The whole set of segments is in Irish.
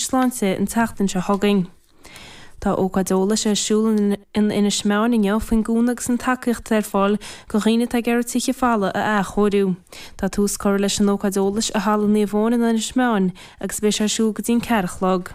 Sláinte an tseachtain seo chugainn. Tá ócáid eolais ar siúl in Inis Meáin inniu faoin gcúnamh agus an tacaíocht atá ar fáil go dhaoine atá ag iarraidh tithe folmha a athchóiriú. Tá tús curtha leis an ócáid eolais i Halla Naomh Eoin in Inis Meáin agus beidh sé ar siúl go dtí an ceathair a chlog.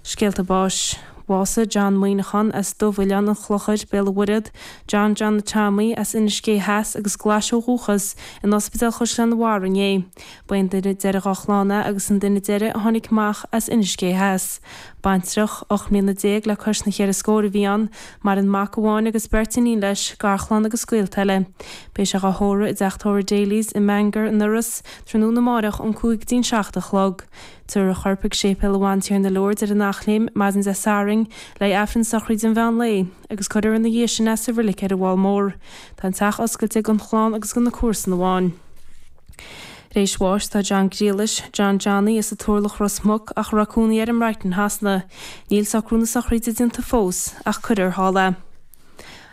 Scéalta báis. Bhásaigh John Maoineachán as Dubh-Oileán an Chlochair, Béal an Mhuirthead, John Johnny Tommy as Inis Géidh Theas agus Glais ó dhúchas, in Ospidéal Chaisleán an Bharraigh inné. Ba é an duine deiridh dhá chlann é agus an duine deiridh a tháinig amach as Inis Géidh Theas. Baintreach, ocht mbliana déag le cois na cheithre scór a bhí ann. Maireann mac amháin agus beirt iníon leis, garchlann agus gaolta eile. Beidh sé dhá thórramh i dteach tórraimh Daly's i mBangor, in Iorras, tráthnóna amárach ón cúig dtí'n seacht a chlog. Tabharfar a chorp chuig Séipéal Bhantiarna Lourdes ar an Eachléim, maidin Dé Sathairn, le haghaidh Aifreann sochraide an mheán lae. agus cuirfear ina dhiaidh sin é sa reilig ar an bhFál Mór. Tá an teach oscailte gon chlann agus go na comharsana amháin. Tar éis bháis tá John Griallais, John Johnny, as an Turlach, Ros Muc, ach a raibh cónaí air i mBrighton Shasana. Níl socrú na sochraide déanta fós, ach cuirfear thall é.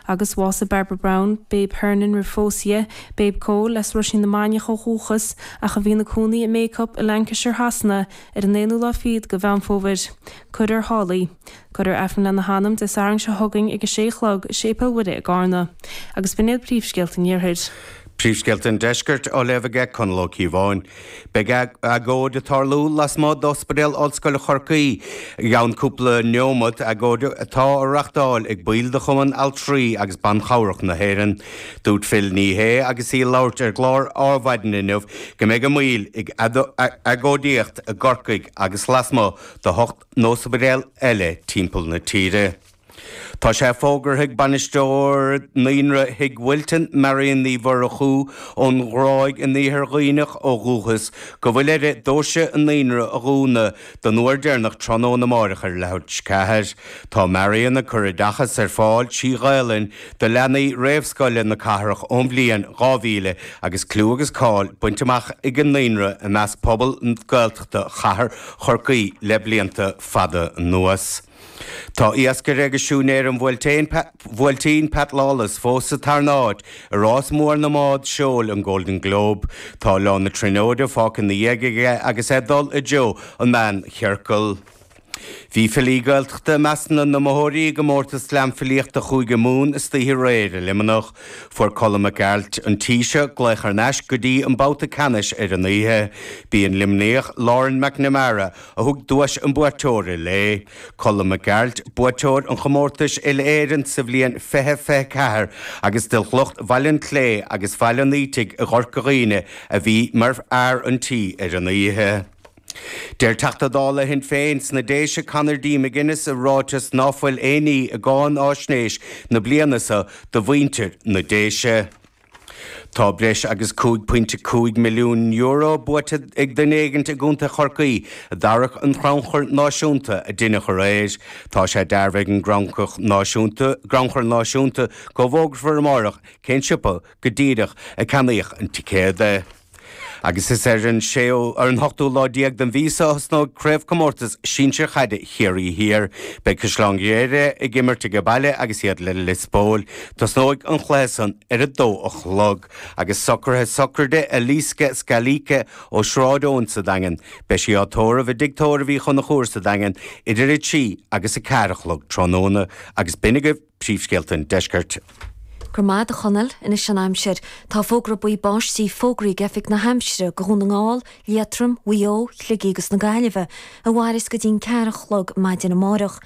Agus bhásaigh Barbara Brown, Babe Hernon, roimh phósadh dhi, Babe Cóil, as Roisín na Mainiach ó dhúchas, ach a bhí ina cónaí i mBacup, i Lancashire Shasana, ar an aonú lá fichead de Mheán Fómhair. Cuirfear thall í. Cuirfear Aifreann lena hanam Dé Sathairn seo chugainn ag a sé a chlog i Séipéal Mhuire i gCarna. Agus b'in iad príomhscéalta an Iarthair. Príomhscéalta an Deiscirt á léamh aige Conall Ó Cíobháin. Beidh agóid ag tarlú lasmuigh d'Ospidéal Ollscoile Chorcaí i gceann cúpla neomat, agóid atá á reáchtáil ag baill de Chumann Altraí agus Ban Chabhrach na hÉireann. Dúirt Phil Ní Sheaghdha agus í ag labhairt ar an gclár Adhmhaidin inniu go mbeidh a mbaill ag agóidíocht i gCorcaigh agus lasmuigh de n-ospidéal eile timpeall na tíre. Tá sé fógartha ag Bainisteoir Naíonra Thigh Wilton, Marian Ní Mhurchú ón Ghráig in Iarthar Dhuibhneach ó dhúchas, go bhfuil uirthi dóirse an Naíonra a dhúnadh don uair deireanach tráthnóna amáireach ar a leathuair tar éis a ceathair. Tá Marian ag cur oideachas ar fáil trí Ghaelainn do leanaí réamhscoile na cathrach ón bhliain 2000 agus clú agus cáil bainte amach ag an naíonra i measc pobal Gaeltachta chathair Chorcaí le blianta fada anuas. Tá iascaire agus siúinéir an Bhuailtín, Pat Lawless, fós sa tarna áit i rás mór na mbád seoil, an Golden Globe. Tá Oileán na Tríonóide fágtha ina dhiaidh aige agus é ag dul i dtreo an Mheánchiorcail. Bhí filí Gaeltachta i measc na n-iomaitheoirí i gcomórtas Slam Filíochta Chúige Mumhan istoíche aréir i Luimneach. Fuair Colm Mac Gearailt, An Taoiseach, glaoch thar n-ais go dtí an babhta ceannais ar an oíche. B'í an Luimníoch, Lauren McNamara, a thug duais an bhuaiteora léi. Colm Mac Gearailt, buaiteoir an chomórtais uile-Éireann sa bhliain 2024 agus de shliocht Bhaile an tSléibhe agus Bhaile an Fhaoitigh i gCorca Dhuibhne, a bhí mar fhear an tí ar an oíche. Deir Teachta Dála Shinn Féin sna Déise Conor D McGuinness i ráiteas ná fuil aon ní i gcáinaisnéis na bliana so do mhuintir na Déise. Tá breis agus €5.5 milliún buaite ag duine éigint i gContae Chorcaí i dtarrac an chrannchuir náisiúnta a deineadh aréir. Tá sé dearbhaithe ag an gcrannchur náisiúnta gcrannchur náisiúnta go bhfógrafar amárach cén siopa go díreach a ceannaíodh an ticéad. Agus is ar an séú, ar an ochtú lá déag den mhí so a thosnóidh Craobhchomórtas Sinsir Chaide Chiarraí Thiar. Beidh Caisleán Ghriaire ag imirt age baile agus iad le Lios Póil. Tosnóidh an chluiche san ar a dó a chlog. Agus socraithe sochraide Eliska Scalise ó Sráid Eoin sa Daingean. Beidh sí á tórramh i dtigh tórraimh Uí Chonchúir sa Daingean idir a trí agus a ceathair a chlog tráthnóna. Agus b'in agaibh. Príomhscéalta an Deiscirt. Go raibh maith agat, a Chonaill. Anois an aimsir. Tá fógra buí báistí fógraithe ag Oifig na hAimsire do Dhún na nGall, Liatroim, Mhaigh Eo, Shligigh agus na Gaillimhe a mhaireas go dtí'n ceathair a chlog maidin amáireach.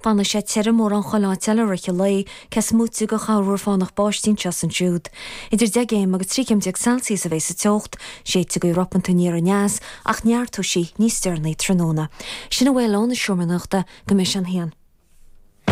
Fanfaidh sé tirim mórán chuile áit eile i rith an lae, cé is moite de chorrmhúr fánach báistí anseo is ansiúd. Idir deich gcéim agus trí chéim déag Celsius a bhéas sa teocht. Séidfidh gaoth ropanta aniar aneas, ach neartóidh sí níos deireanaí tráthnóna. Sin a bhfuil ón Seomra Nuachta go mbeidh sé an haon.